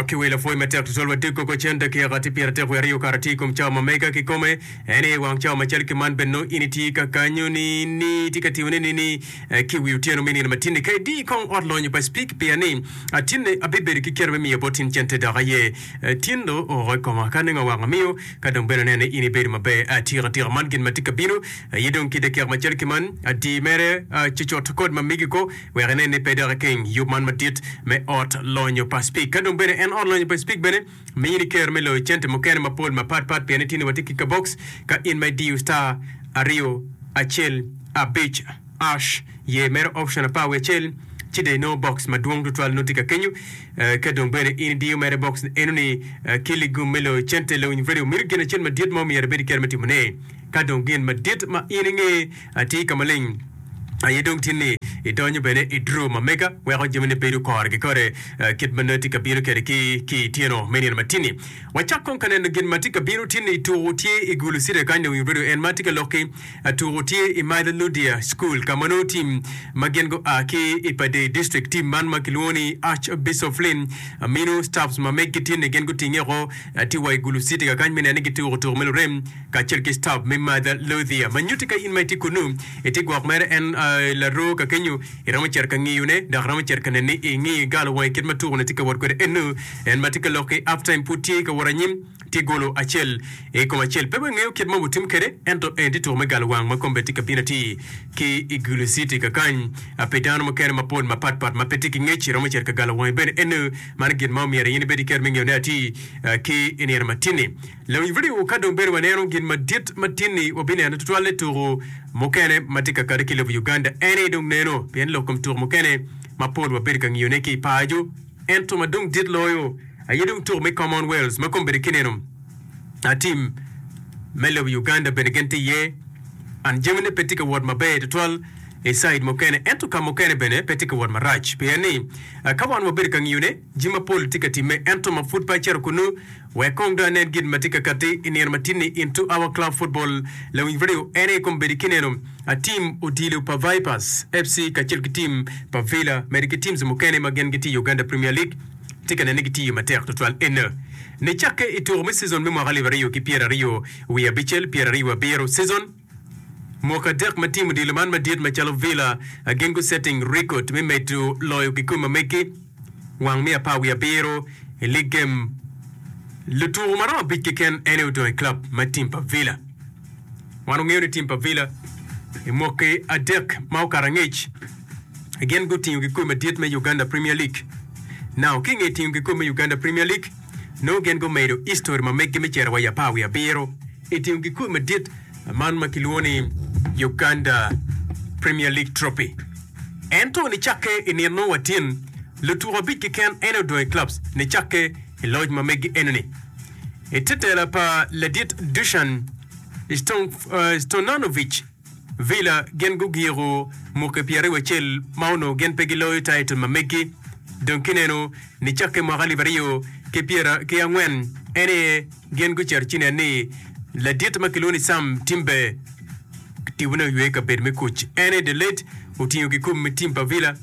Dok ki wi lapwony matek tutwal wa dek koko cen dakika tye pyeratek wiye aryo kare tye i kom cawa ma mega kikome, en aye i wang cawa macalo ki man bene nongo in itye ka kanyo ni ni itye ka tiyone ni ni ki wi otyeno me nino matinni ka idi kong ot lonyo pa Speke pia ni tinne abibedo ki kero me miyo bot in cente dok aye tin do oko i koma ka nenge awako amiyo ka dong bene anene in ibedo maber atika tika man gin matye ka bino aye dong ki dakika macalo ki man adi mere cucut kod ma migi ko wek enen ni pe dok ikeng yub man madit me Ot Lonyo pa Cpik. Ka dong bene en Ot Lonyo pa Cpik bene miyo ni Ker me Loyo cente mukene mapol mapat pat pien itye ni watye ki kabox ka in ma idiyo star aryo acel abic ash ye mere option apar wiye acel ci dong inongo box madwong tutwal nongo tye ka kenyo. Ka dong bene in idiyo mere box eno ni Kili Gum me Loyo Cente, Lewiny Radio mito gin acel madit ma omyero ibed iker me timone. Ka dong gin madit ma in inge Atir ka maleng aye dong tye ni idonyo bene i draw ma mega weko jamine bedo kore ki kore kit ma nongo itye ka bino kwede ki ki i tyeno me nino matini. Wacak kong ka neno gin ma tye ka bino tye ni tuku tye i gulu city kany dong i radio en ma tye ka lok ki tuku tye i Mother Ludia school ka ma nongo team ma gin gua ki i Padei district team man ma kilwongo ni Arch Bishop Flynn amino staffs ma megi tye ni gin gutinge woko tye wa i gulu city kakany me neno ni gituku tuku me lurem kacel ki stop me Mother Lothier ma nyutti ka in ma itye kunnu itye gwok mere en aye laroo ka kenyu iromo cito ka ngiyone dok iromo cito ka nene ni ingi galo wangi kit ma tuku ne tye ka wot kwede ennu en ma tye ka lok ki half time pud tye ka wot anyim tye golo acel ikom acel pe wangeyo kit ma wutim kwede ento eni tye tuku me galo wang ma kom bene tye ka bino atir ki igulu city kakany pi dano mukene mapol mapat pat ma pe tye ki ngec iromo cito ka galo wangi bene ennu mano gin ma omyero in ibed iketo me ngeyone atir ki inino matini Lawiny vidio ka dong bedo waneno gin madit ma tin-ni wabineno tutwal ni tuku mukene ma tye ka kati ki lobo Uganda ene dong neno pien lok kom tuku mukene ma pol wabedo ka ngiyone ki i paco ento ma dong dit loyo aye dong tuku me Commonwealth ma kombeddi kineno a tim me lobo Uganda bene gin tye iye and jamine pe tye ka wot maber tutwal i side mukene ento ka mukene bene pe tye ka wot marac pien ni ka wan wabedo ka ngiyone jami mapol tye ka timme ento ma pud pe acito kunu Wek kong dong anen gin ma tye ka katti i nino matinni in to our club football, lawiny Rio en aye kong bedi ki neno a team odilo pa Vipers FC kacel ki team pa Villa mede ki teams mukene ma gin gitye i Uganda Premier League tye ka nenne gitiyo matek tutwal enne ni cakke i tuko me season me mwaka alip aryo ki pyeraryo wiye abicel, pyeraryo abiro season. Mwaka adek ma tim odilo man madit macalo Villa gin gu setting record me medo loyo kikome ma megi wang miya apar wiye abiro i league game. Lutuko maromo abic keken ene odong i club ma tim pa Villa. Wan ongeyo ni tim pa Villa i mwaki adek ma okato angec gin gutingo kikome madit me Uganda Premier League. Now kinge tingo kikome me Uganda Premier League, Nongo gin gumedo histori ma meggi me cito wa i apar wiye abiro i tingo gikul madit man ma kilwongo ni Uganda Premier League Trophy. Ento nicakke i nino watin, lutuko abic keken ene odong i clubs nicakke i loc ma meggi enoni. I te tela pa ladit Dusan Stojanovic, Villa gin gugiko muke pyeraryo acel ma onongo gin pe giloyo taitol ma meggi. Dong kinenu ni cakke mwaka alip aryo ki pyera ki angwen en aye gin gucito ci nen ni ladit ma kilwongo ni Sam Timbe tibone oywe kabedo me kuc. En aye The Late otingo kikum me tim pa Villa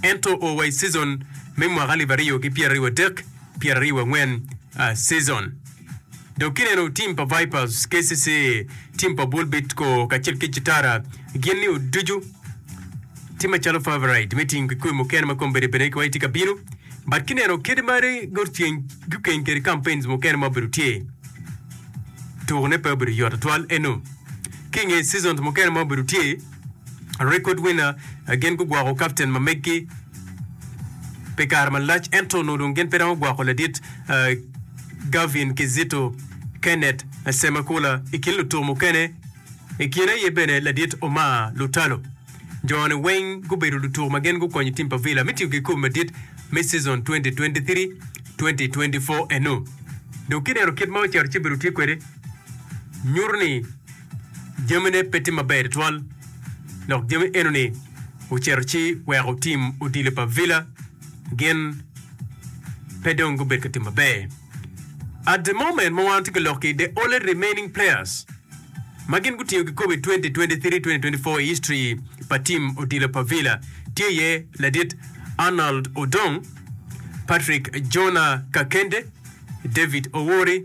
ento oo wa i cizon me mwaka alip aryo ki pyeraryo adek, pyeraryo wangwen season. Dok kineno tim pa Vipers, KCC, tim pa Bull Bidco kacel ki Citara gin ni oducu tye macalo favorite me ting kikoi mukene ma kong bene bene ki wai tye ka bino. But kineno kede mari gurceng gukeng kede campaigns mukene ma obedo tye. Tukone pe obedo yot atwal eno. Ki nge seasons mukene ma obedo tye, Record winner, Gin gugwoko kapten ma meggi pi kare malac ento onongo dong gin pe romo gwoko ladit Gavin Kizito, Kenneth Semakula i kin lutuku mukene. I kine aye bene ladit Omar Lutalo. Jo-ni weng gubedo lutuku ma gin gukonyo tim pa Villa me tiyo kikopo madit me cizon 2023-2024 eno. Dok kineno kit ma ocito ci obedo tye kwede, nyuto ni. jamine pe tye maber tutwal dok jami enoni ocito ci weko tim odilo pa Villa gin pe dong gubedo ka tim maber. At the moment ma wan watye ka lok ki the only remaining players ma gin gutingo kikopo i 2023-2024 i history pa tim odilo pa Villa tye iye ladit Arnold Odong, Patrick Jonah Kakende, David Owori,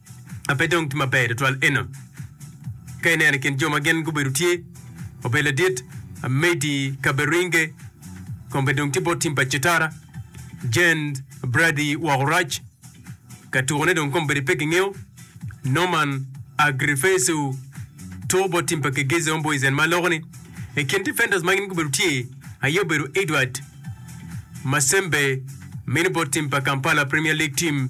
ma pe dong tye maber tutwal eno. Ka ineno i kin jo ma gin gubedo tye obedo ladit Amedi Kaberinge, kombe dong tye bot tim pa Cetara, Jen Brady Waorac, ka tukone dong kombedi pe kingeyo, Norman Agrifesu, two bot tim pa Kegezi Homeboyzen ma loko-ni. I kin defenders ma gin gubedo tye aye obedo Edward Masembe, mini bot tim pa Kampala Premier League team,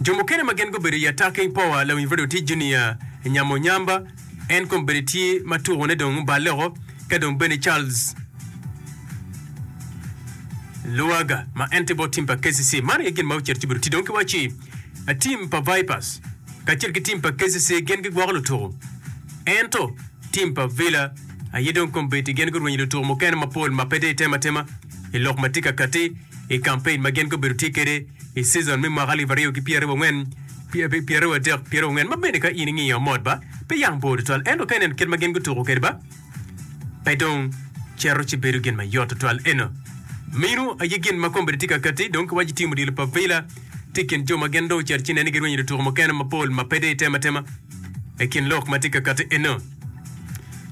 Jo mukene ma gin gubedo i atakke i powa lawiny redio tic Junior Nyamonyamba, en kong bene tye ma tukone dong oballe oko, ka dong bene Charles Luwaga ma en tye bot tim pa kcc. Man aye gin ma ocito ci obedo tic dong ki wacci tim pa Vipers kacel ki tim pa kcc gin gigwoko lutuku ento tim pa Villa aye dong kong bedi gin gurwenyo lutuku mukene mapol ma pe dong itemo atema i lok ma tye ka katti i kampein ma gin gubedo tye kwede I cizon me mwaka alip aryo ki pyeraryo wangwen, pyeraryo adek, pyeraryo wangwen ma bene ka in ingiyo mot ba pe yam bor tutwal ento ka ineno kit ma gin gutuko kwede ba pe dong cito ci bedo gin ma yot tutwal eno. Minu aye gin ma kombeddi tye ka katti dong ki waco tim odilo pa Villa tye ikin jo ma gin dong ocito ci neno ni girwenyo lutuko mukene mapol ma pe deyo tema tema I kin lok ma tye ka katti eno.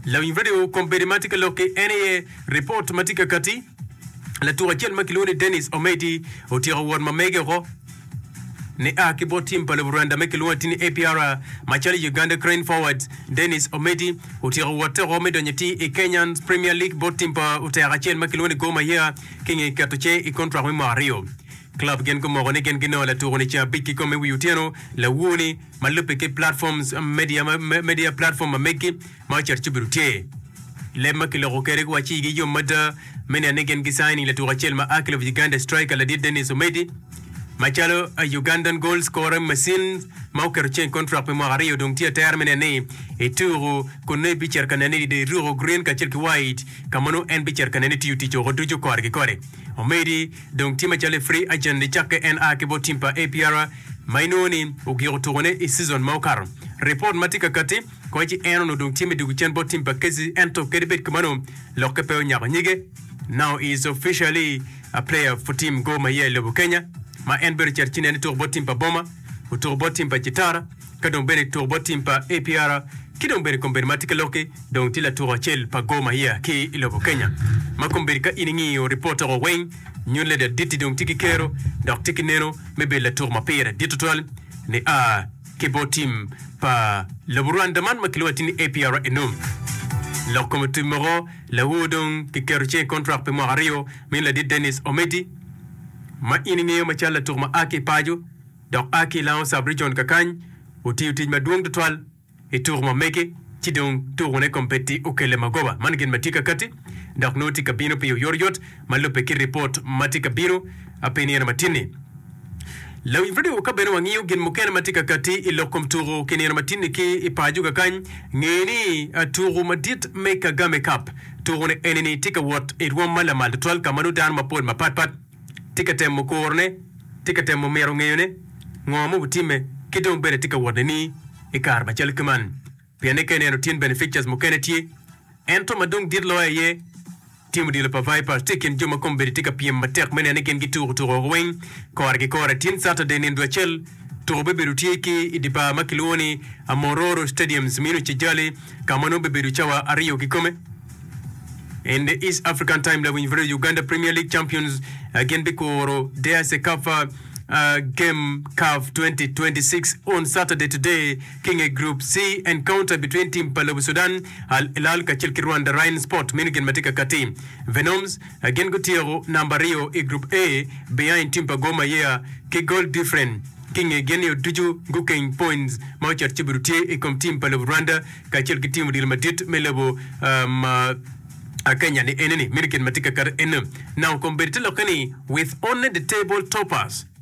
Lawiny radio kombeddi ma tye ka lok ki en aye report ma tye ka katti. Latuk acel ma kilwongo ni Dennis Ometi otyeko wot ma mege woko nia ki bot tim pa lobo Rwanda ma kilwongo atir ni APR macalo i Uganda Cranes Forwards. Dennis Ometi otyeko wotte woko me donyo atir i Kenyan Premier League bot tim pa oteka acel ma kilwongo ni Gor Mahia ki nge keto cing i kontrak me mwaka aryo. Club gin gumoko ni gin ginongo latuko ni ca abic kikome i wi otyeno lawuo ni ma lubbe ki platforms media media platform ma meggi. Ma ocito ci obedo tye. Leb ma kiloko kwede giwacci igi yom mada me neno ni gin gi signing latuko acel ma a ki lobo Uganda striker ladit Denis Omedi macalo a Ugandan goal scoring machine ma oketo ceng contract pi mwaka aryo dong tye atera me neno ni etuku kun nongo ebicito ka nene ni dong eruko green kacel ki white ka ma nongo en bicito ka nene ni tiyo tic oko ducu kore ki kore. Omedi dong tye macalo i free agent ni cakke en a ki bot team pa APR ma inongo ni ogiko tukone i season ma okato. Report ma tye kakati. Kong ci en onongo dong tye me dwogo cen bot tim pa Kezi, ento kadi bed kamano, lokke pe onyako nyige. Now is officially a player for team Gor Mahia i lobo Kenya, ma en bene ocito ci neno tuko bot tim pa Boma, otuko bot tim pa Chitara, ka dong bene tuko bot tim pa APR ki dong bene kombeddi ma tye ka lokke dong tye latuko acel pa Gor Mahia ki i lobo Kenya. Ma kombeddi ka in ingiyo report oko weng, nyuto leda Ditti dong tye ki kero dok tye ki neno me bedo latuko ma pire dit tutwal ni a ki bot tim pa lobo Rwanda man ma kilwongo atir ni APRNO. Lok kom otim moko lawo dong ki keto cinge i kontrak pi mwaka aryo min ladit Dennis Ometi ma in ingeyo macalo latuk ma a ki i paco dok a ki i Lango Sub Region kakany otiyo tic madwong tutwal i tuku ma mege ci dong tuku ne kom peti okele magoba man gin ma tye kakati dok nongo tye kabino pi oyotoyot ma lubbe ki ripot ma tye ka bino pe i nino matinni. Lawiny redio ka bene wangiyo gin mukene ma tye ka katti i lok kom tuku ki nino matinni ki i paco kakany, nge ni tuku madit me Kagame Cup tuku ne enini tye ka wot i rwom ma lamal tutwal ka ma nongo dano mapol mapat pat tye ka temo kuro ne, tye ka temo mito ngeyo ne ngo ma obitimme ki dong bene tye ka wot ne ni i kare macalo kiman. Pien ni ka ineno tin beneficas mukene tye, ento ma dong dit loyo aye, tim odilo pa Vipers tye i kin jo ma kombeddi tye ka pyem matek me neno ni gin gituko tuko woko weng kore ki kore. Tin Saturday nindo acel, tuko bibedo tye ki i di bar ma kilwongo ni Amororo Stadiums ma ino Kigali ka ma nongo bibedo cawa aryo kikome. In the East African Time Lawiny vs Uganda Premier League Champions gin bikuro deya Cecafa game caf 2026 on Saturday today. ki i nge Group C, Encounter between Tim pa lobo Sudan, Al Hilal kacel ki Rwanda Rain Sport meno gin ma tye ka katti. Venoms gin gutyeko namba aryo i Group A behind tim pa Gor Mahia ki goal different ki i nge gin-nio ducu gukeng points ma ocito cibiru tye i kom tim pa lobo Rwanda kacel ki tim odilo madit me lobo Kenya ni ene ni meno gin ma tye ka katti ene. Now kombeddi tye lokke ni with only the table toppers.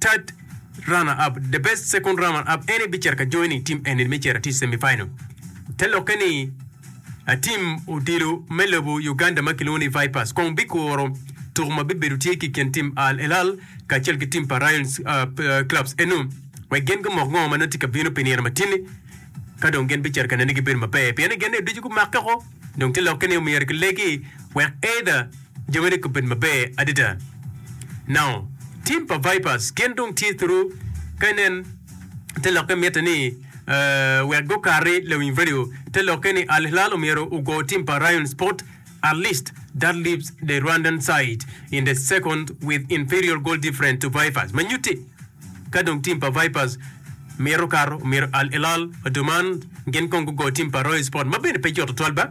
Third runner up, the best second runner up ene bicito ka join i team eni me cito atir semi final. Te lokke ni a team odilo me lobo Uganda ma kilwongo ni Vipers kong bikuro tuku ma bibedo tye ki kin team Al Elal kacel ki team pa Rayons clubs eno wek gin gumok ngo ma nongo tye ka bino pi nino matini ka dong gin bicito ka nene gibedo maber pien ni gin ducu gumakke ko dong te lokke ni omyero kilegi wek either Jo mene gubedo maber adada. Now, team pa Vipers gin dong tye thuru ka inen te lokke mitte ni uh, wek gukati lawiny radio te lokke ni Al Hilal omyero ugo team pa Rayon Sport at least that leaves the Rwandan side in the second with inferior goal different to Vipers ma nyutti ka dong team pa Vipers mito kato omyero Al Hilal, Oduman gin kong gugo team pa Rayon Sport ma bene pe yot tutwal ba.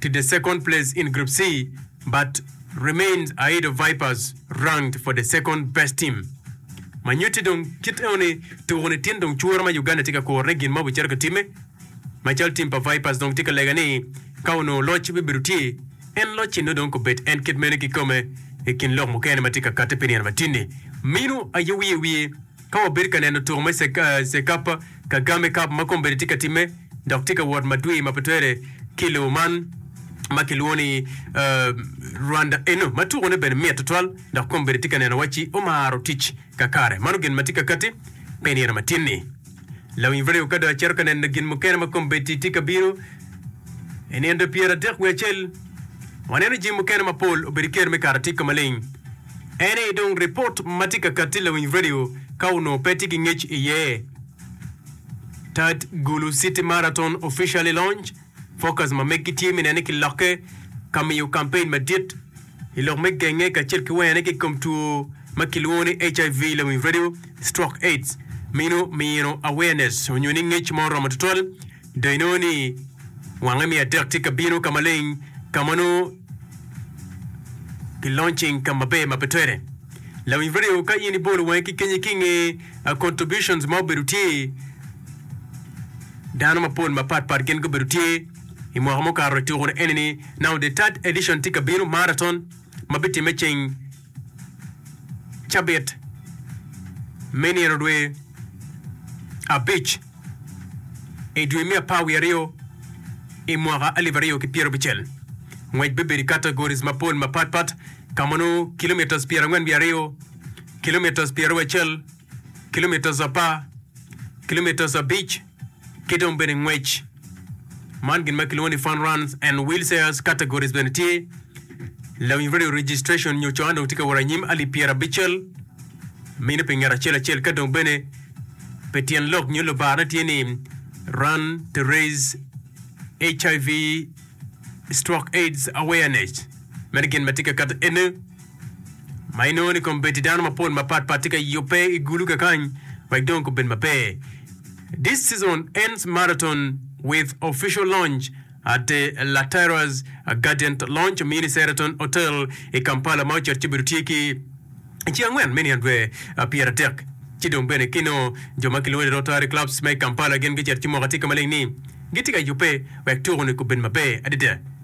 to the second place in Group C but remains ahead of Vipers ranked for the second best team. Ma nyutti dong kit enoni tuku nitin dong cura ma Uganda tye ka kurone gin ma obicito ka timme. Ma calo team pa Vipers dong tye ka lega ni ka onongo loc bibedo tye en locci nongo dong kobed en kit meno kikome i kin lok mukene ma tye ka katte pi nino matini minu aye wiye wiye Ka wabedo ka neno tuko me Cekapa, Kagame Cup, ma kombeddi tye ka timme dok tye ka wot madwir ma pe twere ki lobo man ma kilwongo ni Rwanda eno, ma tukone bene mit tutwal dok kombeddi tye ka neno wacci omaro tic kakare. Mano gin ma tye ka katti pi nino matin-ni. Lawiny redio ka dong acito ka neno gin mukene ma kombeddi tye ka bino i nino dwe pyeradek wiye acel, waneno jami mukene mapol obedo ki kero me kara tika maleng. En aye dong ripot ma tye ka katti lawiny redio ka onongo pe tye ki ngec iye. Tat Gulu City Marathon Officially Launched, Fokus ma megi tye me nene ki lokke ka miyo kampein madit i lok me genge kacel ki wene ki i kom two ma kilwongo ni HIV lawiny redio, Stroke, AIDS, mino mino awareness onyo ni ngec ma oromo tutwal. Dong inongo ni wange me adek tye ka bino ka maleng ka ma nongo kilonyo ceng ka maber ma pe twere. Lawic radio, ka in ibolo wangi ki kenye ki inge a contributions ma obedo tye, dano mapol mapat pat gin gubedo tye i mwaka mukato ituku-ni eni ni now the third edition tye ka bino, marathon, ma bitimme ceng. cabit me nino dwe abic i dwe me apar wiye aryo i mwaka alip aryo ki pyera abicel. Ngwec bibedo i categories mapol mapat pat ka ma nongo kilometres pyera angwen wiye aryo, kilometres pyera wiye acel, kilometres apar, kilometres abic, Ki dong bene ngwec man gin ma kilwongo ni Fun Runs and Wheelchairs Categories bene tye. Lawiny Radio Registration nyo Coan dong tye ka wot anyim alip pyerabicel mine pi ngat acel acel ka dong bene pi tyen lok nyo lubarne tye ni Run to Raise HIV Stroke Aids Awareness. Meno gin ma tye ka kato ene. ma inongo ni kombeddi dano mapol mapat pat tye ka yubbe i gulu kakany wek dong gubed maber. This season ends marathon with official launch at the La Terra's Gardient Lounge, Mini Sheraton Hotel i Kampala ma ocito ci obedo tye ki i ci angwen me niang dwe pyeratek. Ci dong bene ki nongo jo ma kilwongo ni Rotary Clubs ma i Kampala gin gicito ci moko atika maleng ni gitye ka yubbe wek tuko ni gubed maber adada.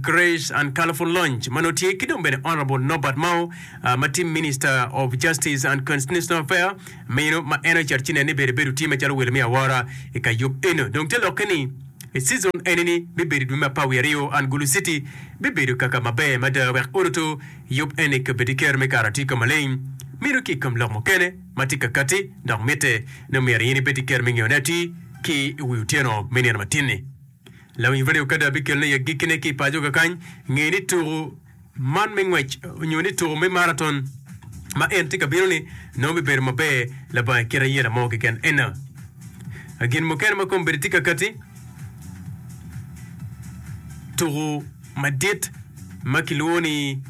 Grace and Colourful Lounge ma nongo tye ki dong bene Honourable Norbert Mao ma tye Minister of Justice and Constitutional Affair meno ma en oceto ci nen ni bedo ebedo tye macalo welo me awora i kayub eno. Dong te lokke ni i season eni ni bibedo i dwe me apar wiye aryo and Gulu City bibedo kaka maber mada wek oruto yub eni ka bedi kero me kare atir ka maleng meno ki i kom lok mukene ma tye ka kati dok mitte ni omyero aye ni bedi kero me ngeyo ne atir ki i wi otyeno me nino matin-ni. Lawiny redio kadi abikelone i agikkine ki i paco kakany, nge ni tuku man me ngwec onyo ni tuku me maraton ma en tye ka bino ni nongo bibedo maber laba i kit aye lamo keken. Ena gin mukene ma kombedi tye kakati tuku madit ma kilwongo ni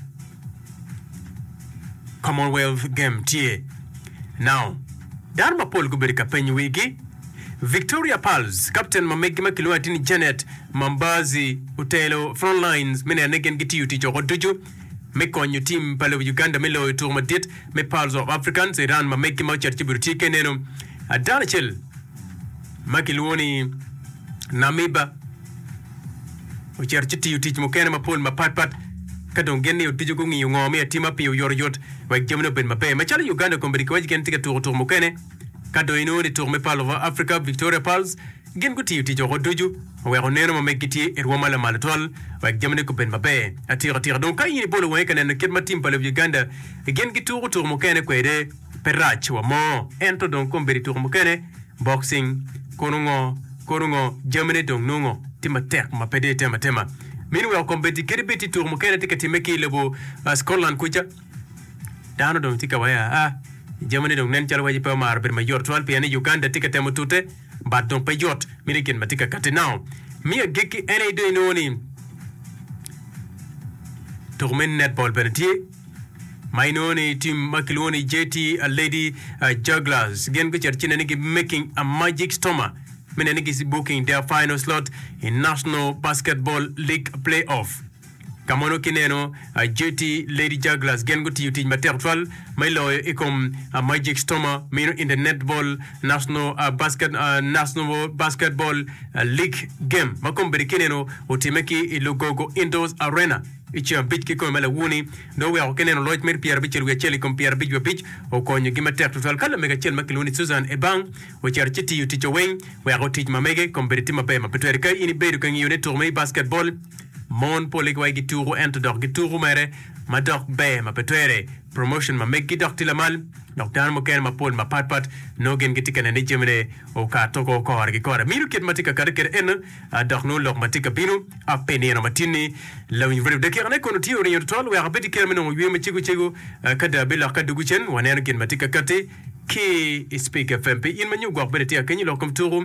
Commonwealth Game tye. Now, dano mapol gubedo ka penyo wigi. Victoria Pearls, kapten ma meggi ma kilwongo atir ni Janet Mambazi otelo Front Lines me neno ni gin gitiyo tic woko ducu me konyo tim pa lobo Uganda me loyo tuko madit me Pearls of Africans i round ma meggi ma ocito ci obedo tye keneno. Dano acel ma kilwongo ni Namiba ocito ci tiyo tic mukene mapol mapatpat ka dong gin ni oducu gungiyo ngo me atima pi oyotoyot wek jamine obed maber. Macalo Uganda Combat Kiwaci gin tye ka tuko tuko mukene Ka dong inongo ni tuk me palo ma Africa, Victoria Pearls gin gutiyo tic woko ducu oweko neno ma meggi tye i rwom ma lamalo twal wek jamine gubed maber atikatika. Dong ka in ibolo wangi ka neno kit ma tim pa lobo Uganda gin gituko tuko mukene kwede, pe rac wa mo. Ento dong kong bed i tuko mukene, boxing, kono ngo, kono ngo, jamine dong nongo tye matek ma pe deyo tema tema. Meanwhile kombeddi kadi bed tye tuko mukene tye ka timme ki i lobo Scotland kuca, Dano dong tye ka wai aa. Jamine dong nen calo waci pe omaro bedo mayot tutwal pien ni Uganda tye ka temo tute but dong pe yot meno i kin ma tye ka katti now. Me agikki en aye dong inongo ni tuku me netball bene tye ma inongo ni team ma kilwongo ni JT Lady uh, Jugglers gin gucito ci nene gi making a magic stoma me nene gi booking their final slot in National Basketball League playoff. Ka mono ki neno JT Lady Jugglers gin gutiyo tic matek tutwal me loyo i kom Magic Stormer mino in the Netball National National Basketball League game ma kome bene ki neno otime ki i Lugogo Indoors Arena i ceng abic ki kome ma lawuni dong oweko ki neno loc mere pyera abicel wiye acel i kom pyera abic wiye abic okonyo gi matek tutwal ka lamege acel ma kilwongo ni Susan Ebang ocito ci tiyo ticce weng weko tic ma mege kome bene tye maber ma pe twere ka in ibedo ka ngiyo ne tuko me Basketball Mon pol i wagi tuku ento dok gi tuku mere ma dok ber ma pe twere promotion ma meggi dok tye lamal dok dano mukene ma pol ma pat pat nongo gin gitye ka neno ni jami ne okato ko kore ki kore mito kit ma tye ka kati kede eno a dok nongo lok ma tye ka bino a pe nino ma tin ni lawiny radio dakika ne kono tye oringo tutwal wek a bed ki kera me nongo yweyo ma cego cego a ka da bi lokke adugu cen wa neno gin ma tye ka kati ki i speak fm pi in ma nyo gwok bene tye ka kenyo lok kom tuku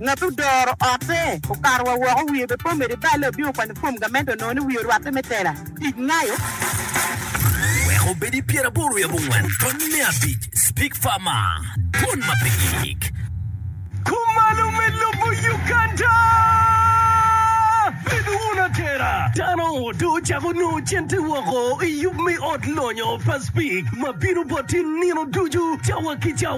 Ngat odoro otte okato wa woko, wiye be pe omedo i balle, obino kwanyo fom gamente onongo ni wiye orwatte me tela tic ngayo. Wek obed i pyeraboro i abongwen tony me abic, Speak Farmer, Dwon ma pe gik. Kumalo me lobo Uganda, Bedo wun atera, dano dong ocako nongo cente woko i yub me ot lonyo pa Speak ma bino bot i nino ducu, cawa ki cawa.